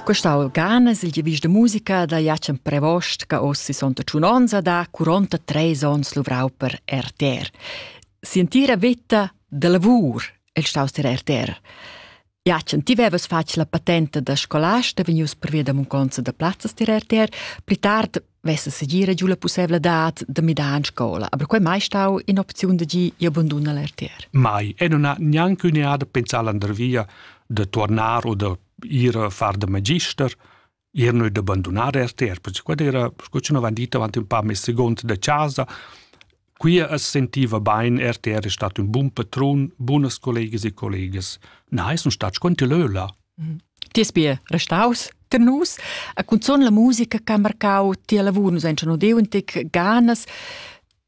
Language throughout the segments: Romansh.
Questa organa è il giavis da musica da Jacem Prevost che oss sono tun onns da 43 onns luvrau per RTR. Sentire vita de lavur è staus der RTR. Jacem, ti vevas fatg la patente da scolasta vegnius per via da munconza da plazzas dir RTR, pli tard vessa segir giu la pussevladad da midar en scola, aber quei mai stau in'opziun da gi abandona l'RTR. Mai, e non ha gnanc un'eada pensar l'andervia de tornar o de ir a far de magister, ir noi d'abbandonar RTR, perché quella era, scu ci non van dit, avanti un pa mes segond de casa, Quia as sentiva bain er ter è stat ün bun patrun, bunas collegas e collegas. Na es nun stat sco lö là. Mhm. Ti es be restaus ter nus, a cunzun la musica che ha marcau ti a lavur nus han schon deu un tic ganas.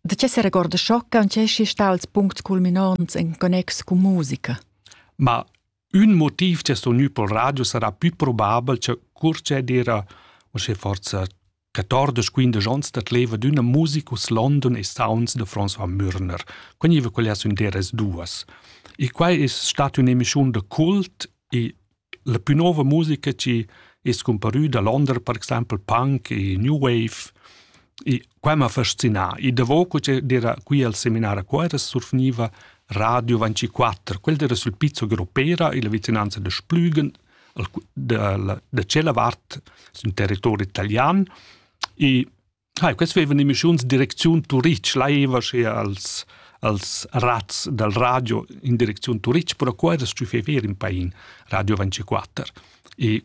Da che se regorda sciocca und che si sta als puncts culminants in connex con musica? Ma un motiv che sto gnü pel radio sarà più probabel che cur che era o sche forza Retardos quindesch onns dat leva d'üna musicus London e sounds de François Mürner. Quai niva quella sun deras duas. E quai es stat ün'emischiun de cult e la più nova musica chi es scumparüda Londra, per exaimpel punk e new wave. E quai m'ha fascinà. E davo co d'era qui al seminar a Cuera surfgniva Radio 24. Quel era sul pizzo Gropera e la vicinanza de Splügen, da, da tschella vart sün territori italian e hai quest vevan emissiuns direcziun Turitg laiva sche als als razz dal radio in direcziun Turitg, però qua era stü fever in pain Radio 24. E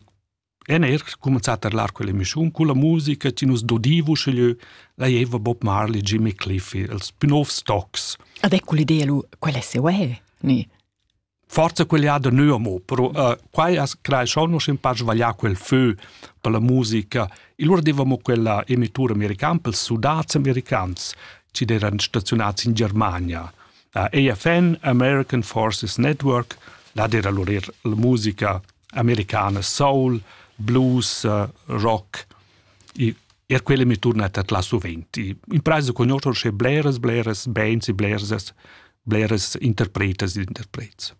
en er comenzat a lar quell'emissiun con la musica che nus dodivu sche la jeva Bob Marley, Jimmy Cliffy, els più nov stocks. Ad ecco l'idea lu, quel è se uè, ni? forza quell'ada neu amo, però uh, quai as crai schon nus in par svaglià quel fö per la musica. Il lur devamo quella emitura americana per sudats americans ci eran stazionats in Germania. Uh, AFN, American Forces Network, là era lur er la musica americana soul, blues, uh, rock. E er quella mi turnat at la suvent. In praisa conoscer sche bleras, bleras bands e bleras, bleras interpretas ed interprets.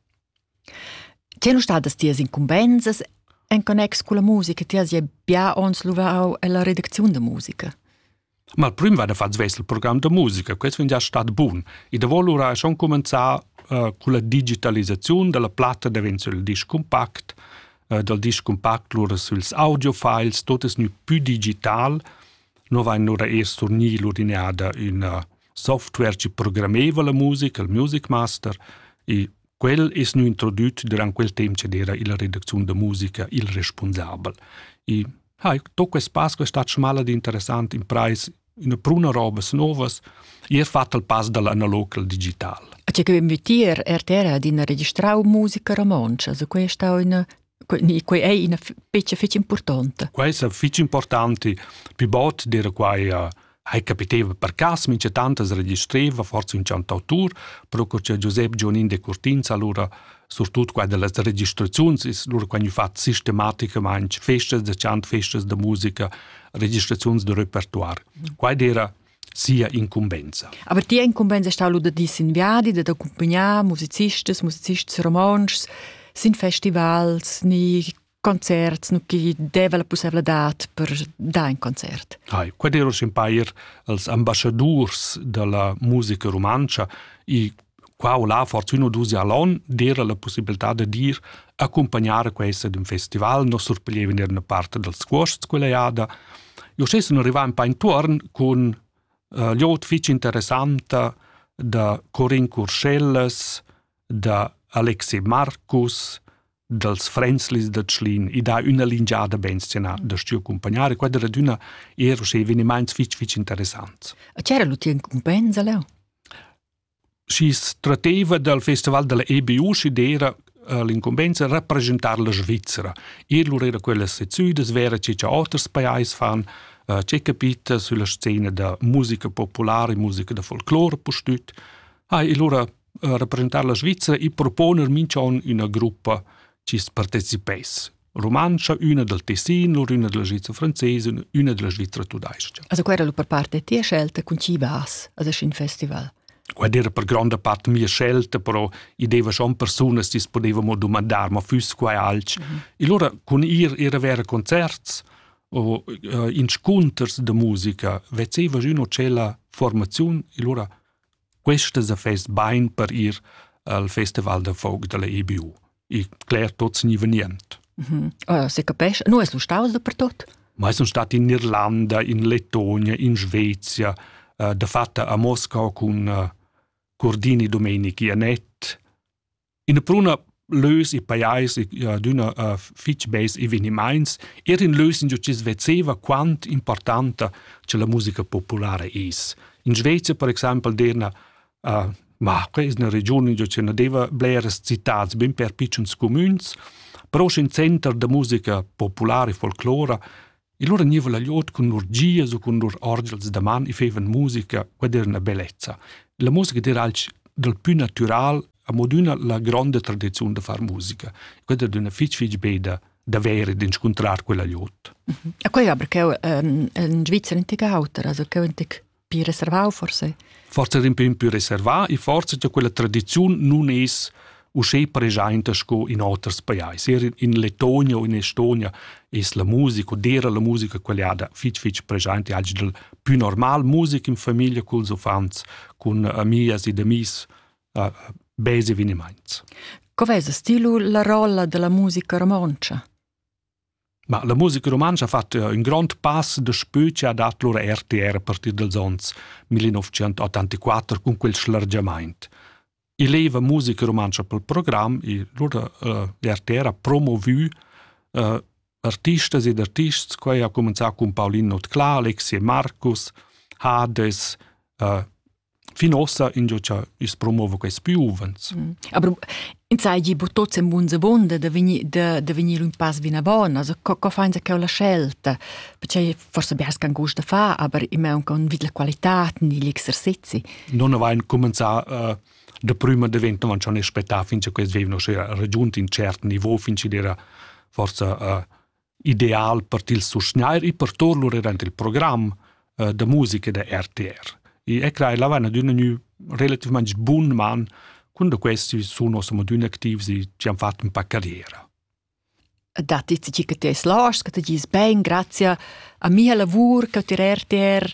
Ti nu stadas tias incumbensas en connex con la musica, ti has ja bia ons luvau ella redacziun da musica. Ma il prüm va da far svess il program da musica, questo fin già stat bun. E da volura schon cominciar uh, con la digitalizzazione della platta diventa il disc compact, eh, dal disc cumpact lura süls audiofiles, tot es gnü pü digital. No vain lura eir surgni l'urineada üna software chi programmeva la musica, il Music Master, e quel es gnü introdüt durant quel temp ch'ed era illa redacziun da musica il respunsabel. E ha, to quest pass quest'at schmal ed interessant imprais üna pruna robas novas e ha fatto il pass dall'analog al digital. A che quem vitier RTR ha d'ina registrau musica romontscha, so questa è una quei è una fece fece importante. Questa fece importante più bot dire quai hai capiteva per cas mince tantas registreva forse un cantautur pro che Giuseppe Gionin de Curtinz allora surtut quando las registrazioni is lur quando fat sistematicamente festas de chant festas de musica registrazioni de repertoire quai era sia incumbenza. Aber die Incumbenza ist auch da diesen Viadi, da accompagnare Musizistas, Musicists romansch, sind Festivals, ni concerts nu chi deva la pussevladad per dar in concert. Hai, quai era s'impair als ambassadurs da la musica rumantscha e qua o là fortuna dus allon d'era la possibilità da dir accompagnare questa d'un festival, non surpiglieva in una parte dels cuosts quella jada. Io stessi non arrivava un po intorn con uh, liot fitch interessanta da Corin Curschellas, da Alexei Marcus, dals Fränzlis da Tschlin i dà üna lingiada bensena da stiu accumpagnare, quai da adüna er sche evenimaints fich fich interessants. A c'era l'util incumbensa leu? Schi strateva dal festival della EBU schi d'era eh, l'incumbensa rappresentar la Svizzera. Ir lur era quellas sezzüdas vera che cha oters pajais fan, eh, c'è capita sulla scena da musica popolare, musica da folclore pustüt. Hai, e lura representar la Svizra e proponer minch'on üna gruppa chi's partecipess rumantscha, üna dal Tessin, lur üna della Svizra francesa, üna della Svizra tudais-cha. Also quella era per parte tia scelta, con chi vas a un festival? Ed era per gronda parte mia scelta, però i deva schon persunas che potevamo domandar, ma fuss quai alch. Mm -hmm. E allora con ir era vera concerts o uh, inscunters de musica, vezeva üno c'è la formazione, e allora Questas affers bain per ir al festival da folk dalla EBU. E cler tots ni venient. Mm -hmm. oh, se capesce, no es lu staus dapertot? Ma sun stat in Irlanda, in Lettonia, in Svezia, uh, de fatta a Moscau cun uh, Cordini Domenichi Anet, ina pruna lös e pajais e adüna uh, fich beis evenimaints, er in lös in chi's vezeva quant importanta che la musica populara es. In Svezia, per exempel, derna uh, Marche ist eine Region, in der c'è deva bleres citats ben per piccions comuns, però in center da musica popolare e folclora E lura gniva la glieud cun lur gias u cun lur orgels da man e feivan musica ed eran a bellezza. La musica d'eira alch dal pü natüral amo d'üna la gronda tradiziun da far musica. Quella era üna fich fich beda davvero d'inscuntrar quella glieud. E quei aber cheu in Svizzera antic auter, also cheu antic più reservau forse? Forse in pin più reservà e forse che quella tradizione non es uscè presente sco in oters pajais. Er in Letonia o in Estonia es la musica, dera la musica quellada fitch fitch presente, oggi del più normal musica in famiglia col uffants, con amias ed amis, uh, base eveniments. Cov'è sta stilu la rolla della musica romoncia? Ma la musica rumantscha ha fatg ün grond pass daspö chi ha dat lur RTR a partir dals ons 1984 cun quel schlargiamaint. I leva musica rumantscha pel program, i lur eh, RTR ha promovü eh, artistas ed artists, quai ha cumanzà cun Paulin Notclà, Alexi e Marcus, Hades, eh, Fin ossa ingio cha i's promova quaists pü uvants. Aber in sai gi bu tots en bun sebunder da vegnir da, da vegnir un pass vina bona, also co, co fain sa cheu la scelta? Perché forse bers can gust da fa, aber immer un con vid la qualità negli exercizi. Non avain comenzà uh, da prima diventa non schon aspettà fin che quels vivano sche giunti in cert niveau fin che era forse uh, ideal per til susgnair e per tor lur durant il program uh, da musica da RTR. E e crai la vana d'una nu relativament bun man quando questi sono siamo d'una activs e ci hanno fatto un po' carriera. Da ti ti che ti es lars, che ti gis ben, grazie a mia lavur che ti RTR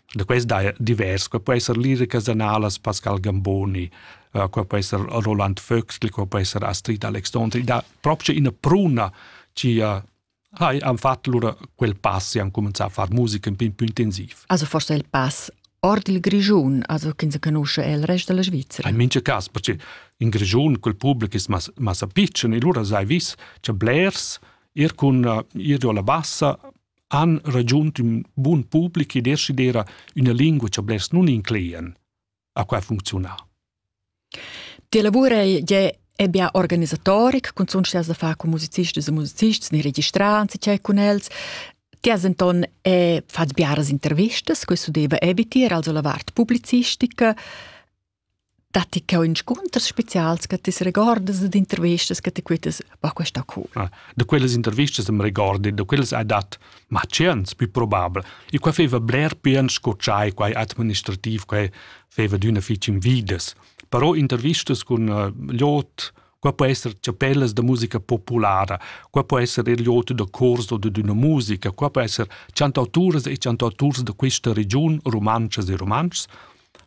Da quest daja divers. Qua po esser liricas analas Pascal Gamboni, uh, qua po esser Roland Vöxtl, qua po esser Astrid Alexandri, da proprio ina pruna ci uh, hai han fatto lura quel pass e han cominciato a fare musica un po' più intensiv. Also forse il pass ord il Grigiun, also che si conosce il resto della Svizzera. In mince cas, perché in Grigiun quel pubblico è mas, massa piccolo e lura sai vis c'è blers, ir con uh, ir alla bassa han ragiunt ün bun public e decidera üna lingua cha blers nun inclean. A qua funcziuna. Ti lavurei je è bia organisatoric, cun sun da far con musicisti e musicisti, ne registrants e cei cun els. Ti has enton è fat biaras intervistas, questo deve eviter, also la vart publicistica. Datti che inscunters spezials che ti regordas ed intervistas che ti quittas, bah, questa cool. Ah, da quelles intervistas am regordi, da quelles hai dat ma chance più probabel. E qua feva bler pian sco tschai, quai administrativ, quai feva d'una fitch invidas. Però intervistas con uh, lot, qua può essere chapellas da musica populara, qua può essere il lot da corso o d'una musica, qua può essere chantautures e chantauturs da questa region, romances e romances,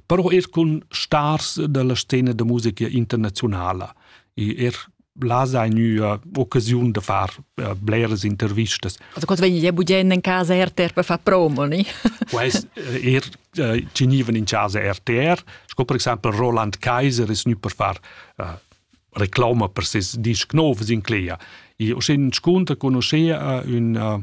però er cun stars dalla scena da musica internazionala e er là sei gnüa occasiun da far uh, bleras intervistas. Also quando vegni budgendo in casa RTR per far promo, ni? Quest eh, er uh, ci gnivan in casa RTR, sco per esempio Roland Kaiser es gnü per far uh, reclama per ses disc novs in Clea. E o sin sconta conoscea uh, un uh,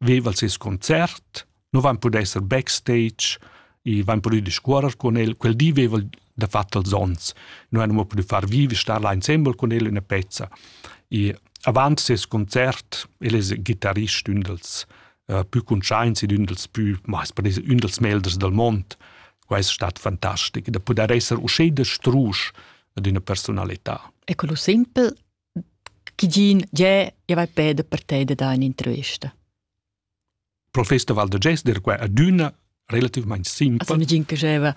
veva ses concert, nu vain pudü esser backstage, i vain pudü discuorrer cun el, quel di veva da fat els ons. Nu han mo pudü far vivi, star là insembel cun el üna pezza. I avant ses concert, el es gitarrist ün dels uh, pü cuntschaints ed ün dels pü, ma es per dire, ün dels melders del mond. Quai es stat fantastic, da pudair esser usché da strusch ad üna personalità. E quello simpel Gigin, jeu java peda per te da dar un'intervista. Professor Val da Gester qua adüna relativmaing simpel. Also nigin che java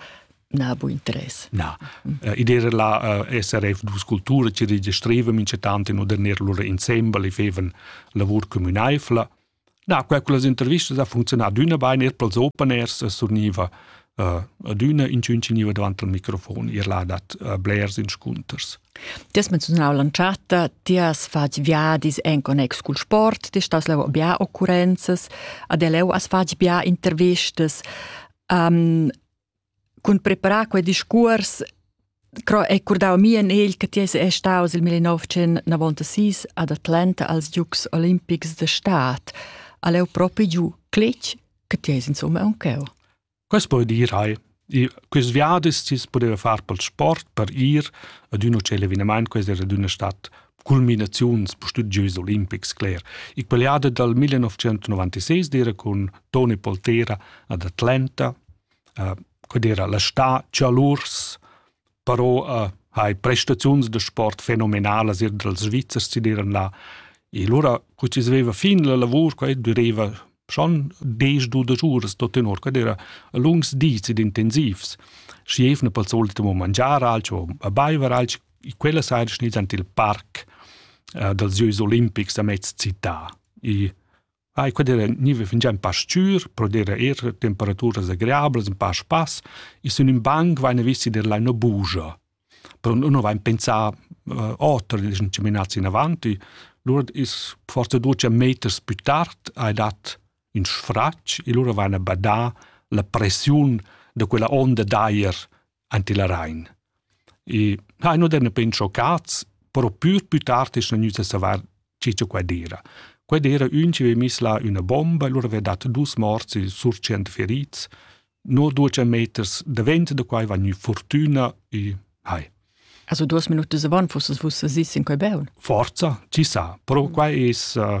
na bu interess. Na, uh, id era la uh, SRF dus cultura ci registreva mince tanti in oder ner lura insembel e feven lavur communaifla Na, quai con las intervistas ha funzionà adüna bain, eir pels open air se surgniva uh, adüna inchün gniva davant al microfon, ir là dat uh, blers inscunters. Ti has menzionau l'entschatta, ti has fatg viadis en connex cul sport, ti stas leu bia occurrenzas, ad leu has fatg bia intervistas. Um, cun preparar quei discuors cro è curdau mi en egl che ti es è staus il 1906 ad Atlanta als Dukes Olympics de Staat all'eu propi giu clic che ti es insomma un cheu Quas poi dir hai I quis viadis tis pudeva far pel sport per ir ad un hotel eveniment quais era d'una stat culminaziuns studios olimpics cler i quell'ada dal 1996 d'era con Tony Poltera ad Atlanta codera la sta chalurs però uh, hai prestaziuns da sport fenomenalas ir dals Svizzers si diran là e lura cu si sveva fin la lavur qua dureva schon des du da giuras da tenor qua era lungs dis ed intensivs schi evna pel solito mo mangiar alcho a baiver alcho quella sera schnis ant il parc uh, dals Gieus Olimpics a mez città e Ai quedera niva fingià ün pa s-chür, pro dir eir temperaturas agreablas, ün pa spass, e sün ün banc vaina visti der laina bugia. Però nun vain pensà uh, oter, dischan chaminats inavant, e lura is forsa duos meters pü tard hai dat ün sfratg e lura vaina badà la pressiun da quella onda d'ajer ante la Rain. E ha no den pen schoccats, però pür pü tard es gnüt a savar che cha quai d'eira. Quai d'eira ün chi aveva miss là üna bomba e lura aveva dat dus morts e sur tschient ferits. No duos meters davent da quai va gnü fortüna e hai. Also duos minut dise van, fusses vus sesi sin quai beun? Forza, ci sa, però mm. quai es uh,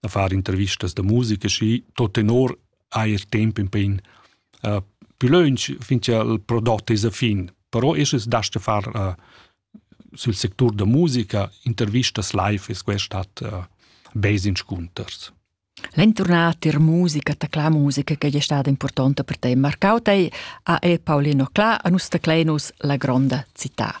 da far intervistas da musica schi tot tenor hai il tempo in pin uh, più lunch finché il prodotto è a fin però es das da far uh, sul sector da musica intervistas live es questat uh, base in scunters L'entornata in musica, ta cla musica che è stata importante per te. Marcau te a e Paolino Cla a Nustaclenus la gronda città.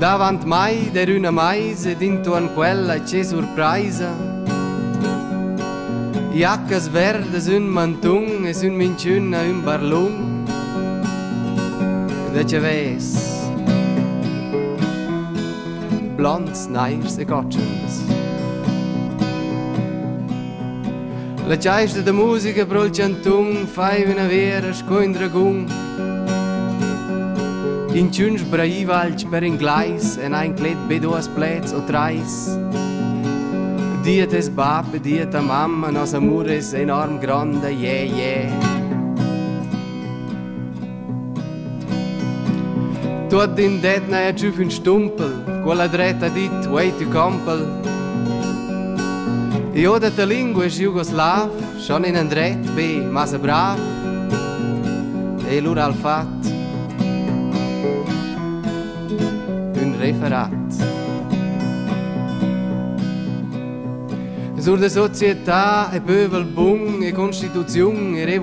Davant mai der üna maisa ed intuorn quella che surpraisa. Jaccas verdas ün mantun es ün minchün a ün barlun. Da che ves? Blonds, nairs e gotschens. La chaista da musica pro il chantun fai üna vera sco ün dragun. Inchün sbraiva alch per inglais e n'ha inclet be duos pleds o trais. Dir tes bab e dir ta mamma, nos amur es enorm grond, yeah, yeah. Tuot in det n'haja tschüf ün stumpel, quella dretta dit, wait you compel. Io da ta lingua es jugoslav, Schon in endret be massa brav e lura al fat ün referat. Sur de società e pövel bun e constituziun e